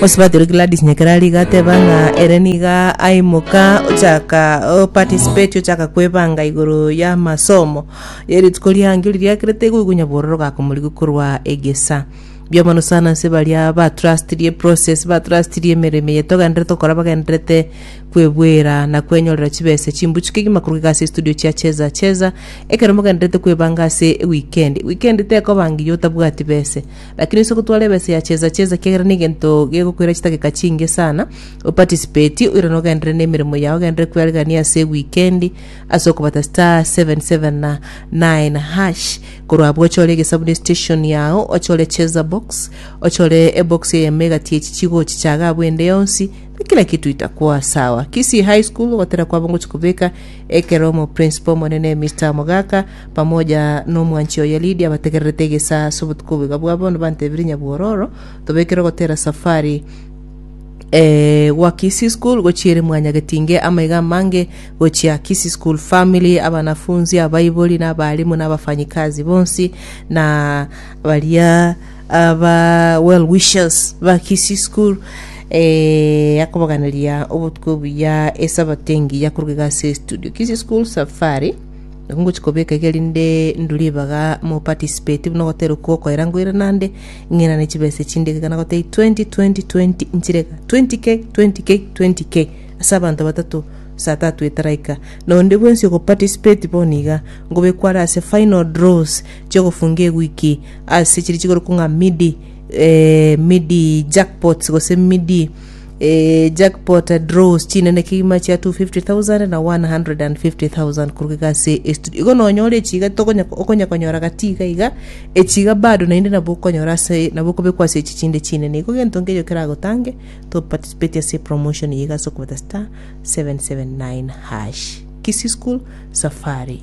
Mosubati oria Gladys Nyakera aria igateba ng'a ere niga aimoka ochaka o participate ochaka kwebanga igoro y'amasomo y'erituko riange riria riakerete igo igo onyabororo ogakomorigia korwa egesa biamano sana ase baria ba trustirie process ba trustirie emeremo eye togenderete gokora bagenderete kwebwera na kwenyorera chibesa chimbuchu kegima korwa iga ase estudio chia cheza cheza ekero mogenderete kwebanga ase weekend weekend tekoba ngiya otabwati bese Lakini ase ogotwara ebesa ya chesa chesa kiagera negento gegokoira chidakika chinge sana, opatisipeti oirane ogenderere nemeremo yao ogenderere kwearigania ase wikendi ase okobata star seven seven na nine hash korwa abwo ochore egesabu ne station yao ochore chesa box ochore ebox eyemo egati echi chigochichaga abwo ende yonsi na kila kitu itakuwa sawa kisii high school ogotera kwabo ngochi kobeka ekero omoprincipo omonene Mister mogaka pamoja nomwanchi oye Lidia bategererete egesaa ase obotuko obo. Iga bwa bono bantebire nyabwororo, Tobekere gotera safari eh, gwa Kisii School gochia ere Mwanyagetinge, amaiga amange gochia Kisii School Family, abanafunzi, abaibori, na abalimu, na abafanyikazi bonsi, na baria aba well wishers ba Kisii School eh, akobaganeria obotuko obuya esabato engiya korwa iga ase studio Kisii School Safari. Nabo ngochia kobeka iga erinde ndue ribaga mo participate buna ogoterwa kwo okoira ngoire nande ng'inane chibesa echinde iga kana gotebia 20 20 20 nchire iga 20k 20k 20k ase abanto batato saa tatu etaraika na onde bwensi oko participate bono iga ngobekwa are ase final draws chia ogofunga ewiki ase chiria chikorokwa ng'a midi midi jackpots gose midi Ee, jackpot draws chinene kegima chia 250,000 na 150,000 koruga iga ase estudio. Igo nonyore echiga tokonya okonya konyora gati iga iga, echiga bado naende nabo okonyora ase nabo okobekwa ase echi chinde chinene. Igo gento nkeyo keragotange to participate ase promotion eye iga ase okobeta star 779 hash. Kisii school safari.